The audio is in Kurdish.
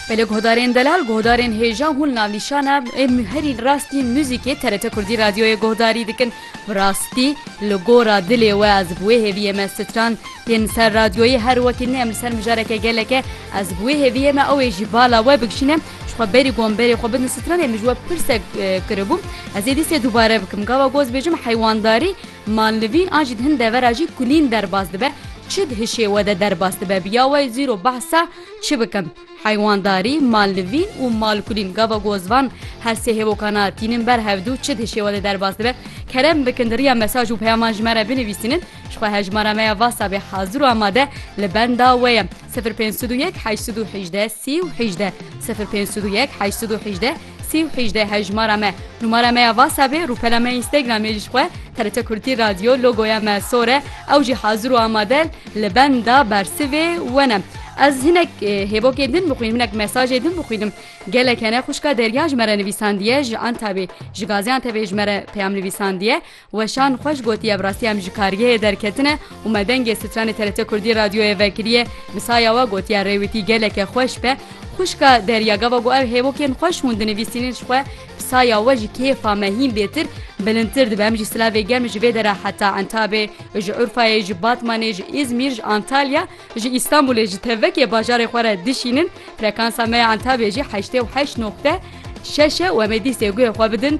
Belê guhdarên delal, guhdarên hêja hûn navnîşana ê herî rastî muzîkê TRT Kurdî Radyoyê guhdarî dikin. Bi rastî li gora dilê we ez bi wê hêviyê me stran tên li ser radyoyê her wekî ne em li ser mijareke geleke ez bi wê hêviyê me ew ê jî bala we bikşîne ji xwe berî gon berê xwe bidin stran ê min ji we pirsek kiribû ez ê dîsê dubare bikim gava goz bêjim heywandarî Manlivîn a jî di hin devera jî kulîn derbas dibe, çi di hişê we de derbas dibe bi ya we zîro behs e çi bikim. Heywandarî, manlivîn û malkulîn gava ku ez van her sê hêvokan a tînin ber hevdu çi di hişê we de derbas dibe. Kerem bikin di riya mesaj û peyaman ji me re binivîsînin. Ji xwe hejmara me ya whatsappê hazir û amade li benda we ye sifir pênc sed û yek heşt sed û hejdeh sî û hejdeh sifir pênc sed û yek heşt sed û hejdeh. Sî û hejdeh hejmara me. Numara me ya Whatsappê, rûpela me Instagramê ji xwe, TRT Kurtî Radio, logoya me sor e, ew jî hazir û amade li benda bersivê we ne. Ez hinek hêvokên din bixwînim, hinek mesajê din bixwînim. Gelek hene xwişka Derya ji me re nivîsandiye, ji Antabê, ji Gaziantepê ji me re peyam nivîsandiye. Weşan xweş gotî ev rastî em ji kargehê derketine û me dengê stranê TRT Kurdî radyoyê vekiriye bi saya we gotiye rê wî tî geleke xweş be xwişka Derya gava got ev hêvokên xweş hûn dinivîsînin ji xwe bi saya we ji kêfa me hîn bêtir bilindtir dibe em jî silavê germ ji vê dere heta Entabê ji Urfayê ji Batmanê ji Îzmîr ji Antalya ji Îstanbulê ji tevekê bajarê xwe re dişînin frekansa me ya Entabê jî heştê û heşt noqte şeş e û em ê dîstê guhê xwe bidin